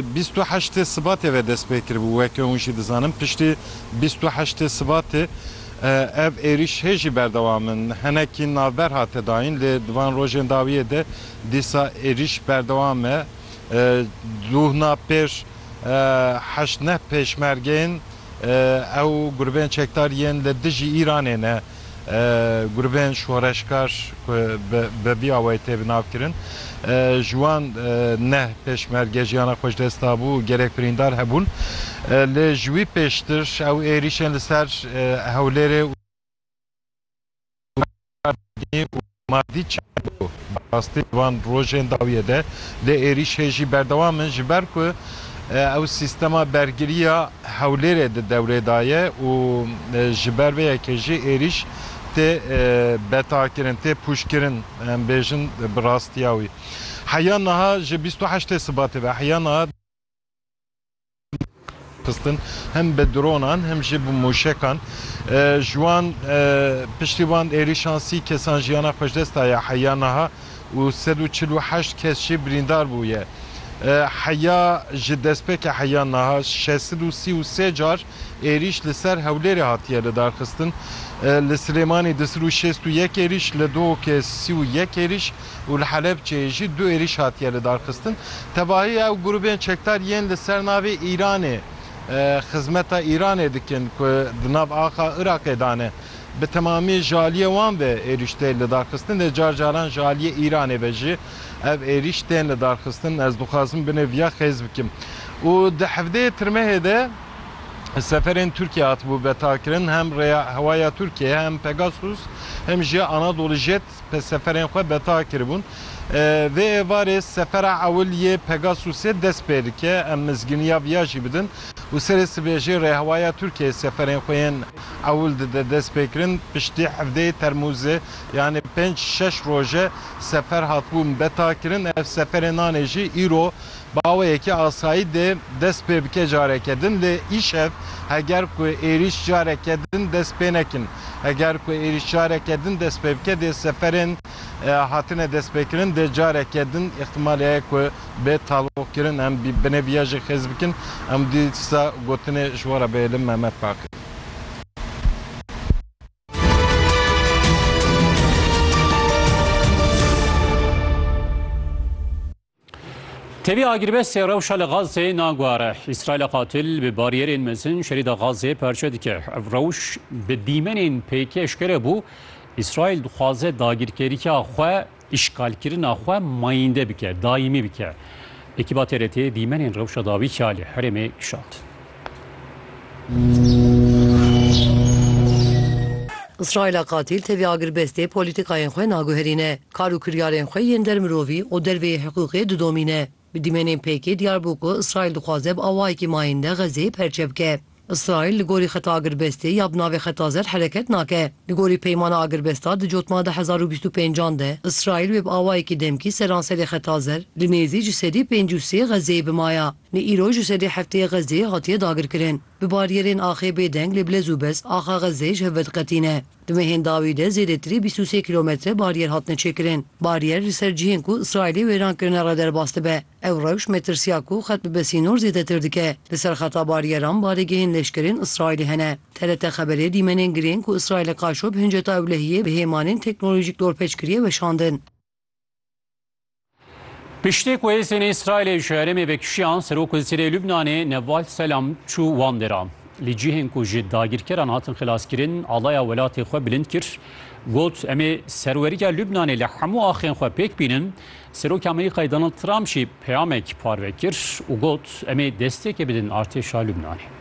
Bîst û heştê Sibatê ve dest pê kiribû. Weke hûn jî dizanin piştî bîst û heştê Sibatê ev êrîş hê jî berdewam in. Hinekî navber hate dayîn lê di van rojên dawiyê de dîsa êrîş berdewam e. Duhna pêş heşt neh pêşmergeyên. Ew grûbên çekdar yên li dijî Îranê ne, grûbên şoreşkar ku bi vî awayî tê binavkirin. Ji wan neh pêşmerge jiyana xwe ji dest dabû û gelek birîndar hebûn. Lê ji wî pêştir ew êrîşên li ser Hewlêrê û. û Mardî Çergo bi rastî di van rojên dawiyê de lê êrîş hê jî berdewam in ji ber ku ew sîstema bergiriya Hewlêrê di dewrê de ye û ji ber vê yekê jî êrîş tê betakirin, tê pûçkirin em bêjin bi rastiya wî. Heya niha ji bîst û heştê Sibatê ve heya niha. xistin hem bi dronan hem jî bi mûşekan ji wan piştî wan êrîşan sî kesan jiyana xwe ji dest daye heya niha û sed û çil û heşt kes jî birîndar bûye. Heya ji destpêkê heya niha şeş sed û sî û sê car êrîş li ser Hewlêrê hatiye lidarxistin. Li Silêmanî du sed û şêst û yek êrîş, li Duhokê sî û yek êrîş, û li Helebçeyê jî du êrîş hatiye lidarxistin. Tevahî ew grûbên çekdar yên li ser navê Îranê xizmeta Îranê dikin ku di nav axa Iraqê de ne, bi temamî ji aliyê wan ve êrîş tê lidarxistin, lê car caran ji aliyê Îranê ve jî ev êrîş tên lidarxistin. Ez dixwazim binê viya xêz bikim û di hevdeyê Tirmehê de seferên Tirkiyê hatibû betakirin, hem rêya hewa ya Tirkiyeyê, hem Pegasus, hem jî Anadolu Jet. seferên xwe beta kiribûn. Vê êvarê sefera ewil yê Pegasusê dest pê dike, em mizgîniya viya jî bidin û serê sibê jî Rêhewaya Tirkiyeyê seferên xwe yên ewil dide destpêkirin. Piştî hevdeyê Termûzê yanî pênc şeş roj e sefer hatibûn betakirin. Ev seferên nanê jî îro Bi awayekî asayî dê dest pê bike careke din lê îşev heger ku êrîş careke din dest pê nekin. Heger ku êrîş careke din dest pê bike dê seferên hatine destpêkirin dê careke din îxtîmalê heye ku bê talûqkirin em binê viya jî xêz bikin. Em dîsa gotinê ji we re bihêlin Mehmet Baqir. Tevî agirbestê rewşa li Gazeyê naguhere. Îsraîla qatil bi bariyerên mezin şerîda Gazeyê perçe dike. Ev rewş bi dîmenên pêk eşkere bû. Îsraîl dixwaze dagirkeriya xwe, îşgalkirina xwe mayînde bike, daîmî bike. Ekîba TRT'ê dîmenên rewşa dawî ya li herêmê kişand. Îsraîla qatîl tevî agirbestê polîtîkayên xwe naguherîne, kar û kiryarên xwe yên der mirovî û der vê yê hiqûqê didomîne. Bi dîmenên pêkê diyar bû ku Îsraîl dixwaze bi awayekî mayînde Xezzeyê perçe bike. Îsraîl li gorî xeta agirbestê ya bi navê Xeta Zer hereket nake. Li gorî peymana agirbesta di cotma di hezar û bîst û pêncan de Îsraîl wê bi awayekî demkî seranserê Xeta Zer li nêzî ji sedî pêncî û sê Xezzeyê bimaya. Li îro ji sedî heftê Xezê hatiye dagirkirin. Bi barîyerên axê bêdeng lê bilez û biz axa Xezê ji hev vediqetîne. Di mehên dawî de zêdetirî bîst û sê kîlometre barîyer hatine çêkirin. Barîyer li ser cihên ku Îsraîlê wêran kirine re derbas dibe. Ew rewş metirsiya ku xet bibe sînor zêdetir dike. Li ser xeta barîyeran barêgehên leşkerên Îsraîlê hene. TRT Xeberê dîmenên girên ku Îsraîl li Kaşo bi hinceta ewlehiyê bi hêmanên teknolojîk dorpêç kiriye weşandin. Piştî ku hêzên Îsraîlê ji herêmê vekişiyan Serok Wezîrê Lubnanê Neval Selam çû wan dêra. Lê cihên ku ji dagîrkeran hatin xilaskirin alaya welatê xwe bilind kir. Got em ê serweriya Lubnanê li hemû axên xwe pêk bînin. Serokê Amerîkayê Donald Trump jî peyamek parve kir û got em ê destpêkê bidin artêşa Lubnanê.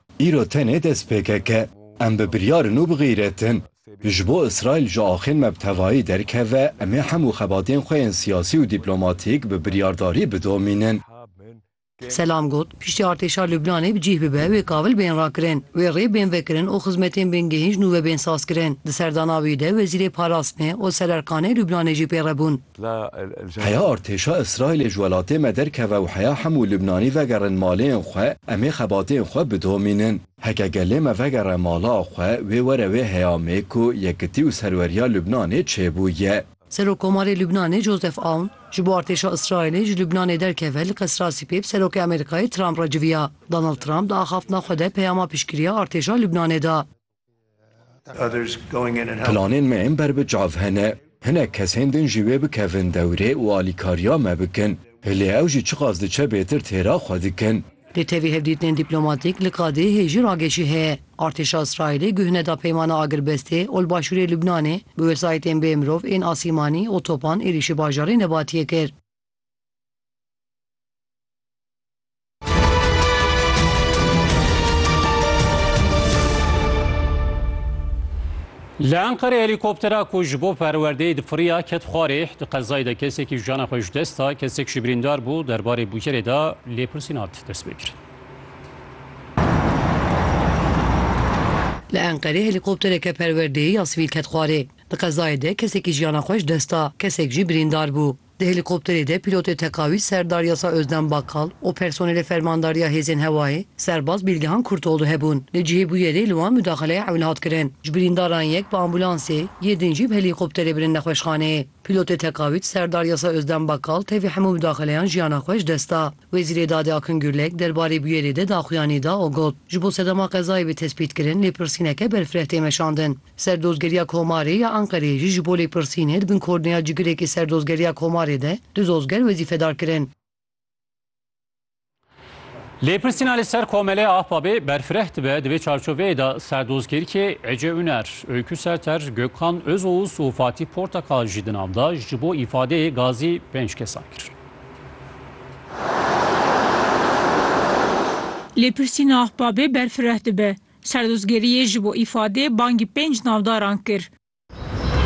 Îro tenê dest pêkeke, em bi biryar in û bi xîret in. Ji bo Îsraîl ji axên me bi tevayî derkeve, em ê hemû xebatên xwe yên siyasî û dîplomatîk bi biryardarî bidomînin. Selam got, Piştî artêşa Lubnanê bi cîh bibe, wê kabil bên rakirin, wê rê bên vekirin û xizmetên bên gihîn ji nû ve bên sazkirin. Di serdana wî de Wezîrê Parastinê Oser Erkanê Lubnanê jî pê re bûn. Heya artêşa Îsraîlê ji welatê me derkeve û heya hemû Lubnanî vegerin malên xwe, em ê xebatên xwe bidomînin. Heke gelê me vegere mala xwe, wê were wê heya me ku yekitî û serweriya Lubnanê çêbûye. Serokkomarê Lubnanê Joseph Aoun, ji bo artêşa Îsraîlê ji Lubnanê derkeve li Qesrasî pê bi Serokê Amerîkayê Trump re civiya. Donald Trump di axaftina xwe de peyama piştgiriya artêşa Lubnanê da. Planên me ên ber bi çav hene. Hinek kes hên din jî wê bikevin dewrê û alîkariya me bikin. Hilê ew jî çiqas diçe bêtir têra xwe dikin. Li tevî hevdîtinên dîplomatîk li Kadêhê jî ragêşî heye. Artêşa Îsraîlê guh neda peymana agirbestê û li başûrê Lubnanê bi wesayîtên bê mirov ên asîmanî û topan êrîşî bajarê Nebatiyê kir. Li Enqerê helîkoptera ku ji bo perwerdeyê difiriya ket xwarê di qezayê de kesekî jiyana xwe ji dest da, kesek jî birîndar bû derbarê bûyerê de lêpirsîn hat destpêkirin. Li Enqerê helîkoptereke perwerdeyê ya sivîl ket xwarê. Di qezayê de kesekî jiyana xwe ji dest da, kesek jî birîndar bû. Di helîkopterê de pîlotê tekawîl Serdar Yasa Özden Bakkal û personelê Fermandariya Hêzên Hewayê Serbaz Bîlgihan Kurtoğlu hebûn. Li cihê bûyerê li wan mudaxeleya ewil hat kirin. Ji birîndaran yek bi ambûlansê, yê din jî bi helîkopterê birin nexweşxaneyê. Pîlotê tekawîl Serdar Yasa Özden Bakkal tevî hemû mudaxeleyan jiyana xwe ji dest da. Wezîrê Dadê Akın Gürlek derbarê bûyerê de daxuyanî da û got, Ji bo sedema qezayê bê tespîtkirin lêpirsîneke berfireh tê meşandin. Serdozgeriya Komarê ya Enqereyê jî ji bo lêpirsînê di bin korneya cigirêkê Serdozgeriya Komarê de du zozger wezîfedar kirin. Lêpirsîna li ser Komeleya Ahbabê berfireh dibe di vê çarçoveyê de Serdozgerkê Ece Uner, Öykü Serter, Gökhan Özoğuz û Fatîh Portakal jî di nav de ji bo îfadeyê gazî pênc kesan kir. Lêpirsîna Ahbabê berfireh dibe. Serdozgeriyê ji bo îfadê bangî pênc navdaran kir.